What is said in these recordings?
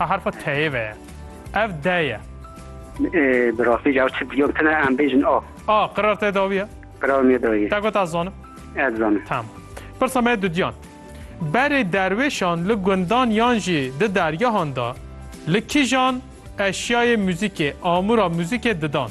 A harfa teyê ve ye. Ev de ye. Bi rastî ji ew çi diyom tune em bêjin a. A qirar te dawiye? Qirar me dawiye. Te got ez zanim? Ez zanim. Tamam. Pirsa me dudiyan. Berê derwêşan li gundan yan jî di dergehan de li kîjan eşyayê muzîkê, amûra muzîkê didan?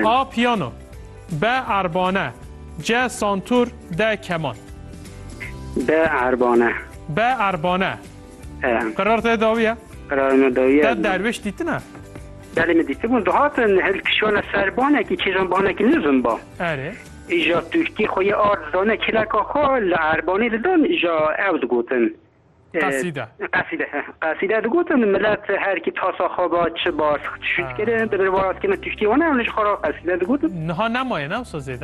A piyano, B erbane, C santûr, D keman. B erbane. B erbane. Qerar te dawiye? Qerar me dawiye. Te derviş dîtine? Belê min dîtibûn dihatin hil kişana serbanekî çêjanbanekî nizin ba. Erê. Îja Tirkî xwe yê ard zane kêleka xwe li Erbanî didan îja ew digotin. Qesîde. Qesîde he. Qesîde digotin milet herkî tasa xwe ba çi ba şût kirin di bin waraskê me Tirkî wan ew li ji xwe re qesîde digotin. Niha nemaye ne wisa zêde?